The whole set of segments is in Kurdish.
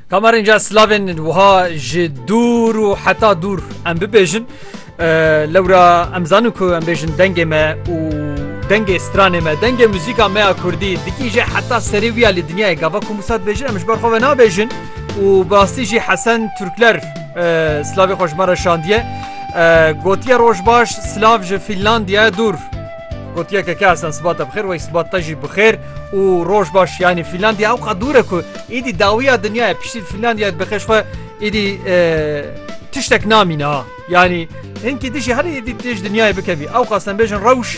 Kamarînca slavên wiha ji dûr û heta dûr em bibêjin lewra em zanin ku em bêjin dengê me û dengê stranê me dengê muzîka me ya Kurdî dikî jî heta serê wiya lê dinyayê gava ku Musat bêjin em ji ber xwe ve nabêjin û birastî jî Hesen Turkler slavê xwe ji me re şandiye gotiye roj baş silav ji Fînlandiya dûr gotiyeke ke esan sibata bixêr wey sibat te jî bixêr. û rojbaş yanî Fînlandya ew qad dûre ku êdî dawiya dinya ye piştî Fînlandya dibixeş xwe êdî tiştek namîne ha yanî hinkî dijî herî êdî têj dinyayê bikevî ew qastem bêjin rewş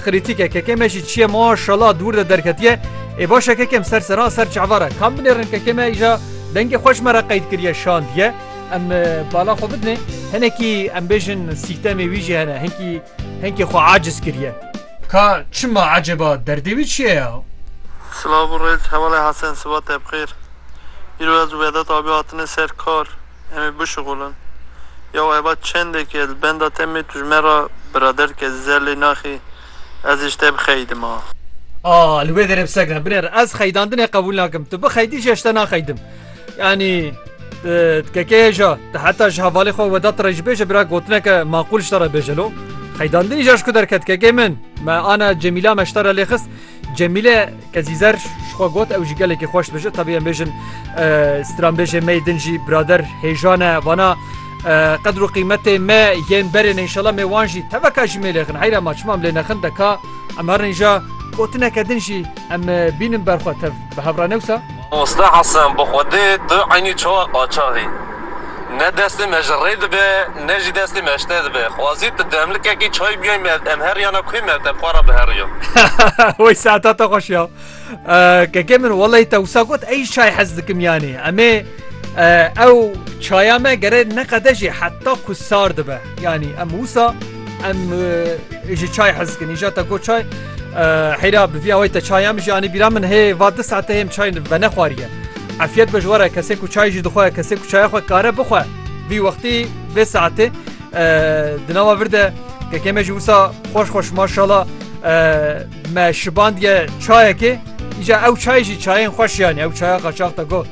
xrîtîke keke me jî çiye ma şala dûr de derketiye ê başa kekem ser sera ser çavara kam binêrin keke me îja dengê xweş me re qeyd kiriye şandiye em bala xwe bidinê hinekî em bêjin sîstemê wî jî hene hinkî Henkê xwe aciz kiriye. Ka çima eceba derdê wî çi ye ya? Silav û rêz hevalê Hesen sibatê bixêr. Îro ez û Vedat abî hatine ser kar em ê bişuxulin. Yaw eba çendekî ez li benda te mê tu ji me re biraderk ez zer lê naxî ez ê ji te bixeyidima. A li wê derê bi seg re. Binêr ez xeyidandinê qebûl nakim. Tu bixeyidî jî ez ji te naxeyidim. Yanî tkekeyê ja te heta ji hevalê xwe weda te re jî bêje bira gotineke maqûl ji te re bêje lo. Xeydandinî ja ji ku derket kekê min me ana Cemîla me ji te re lê xist. Cemîle kezîzer ji xwe got ew jî gelekî xweş dibêje tevî em bêjin stranbêjê me yê din jî birader hêjan e vana qedr û qîmetê me yên berê ne înşela me wan jî teveka jî mêlê xin heyra ma çima em lê nexin deka em her nîja gotineke din jî em bînin berxwe tev. Bi hevranewsa. Mamoste Hesen bi xwedê tu eynî çawa qaçax î. Ne destê me ji rê dibe ne jî destê me ji te dibe. Xwazî tu demlikekî çay biyayî me em heriyana ku me te bi xwe re biheriya. Wey saeta te xweş ya. Keke min wellahî te wisa got ey çay hez dikim yanî. Em ê. Ew çaya me gere neqede jî heta ku sar dibe yanî em wisa em ji çay hezkin îja te got çay heyra bi vîya wê te çaya min janî bîra min hê va di saete hê çay ve nexwariye efiyet be ji were kesê ku çay jî dixwe kesê ku çaya xwe kare bixwe vî wextî vê saetê di nava vir de kekê me jî wisa xweş xweş maşala me şibandiye çayekê îja ew çay jî çayên xweş yanî ew çaya qaçax te got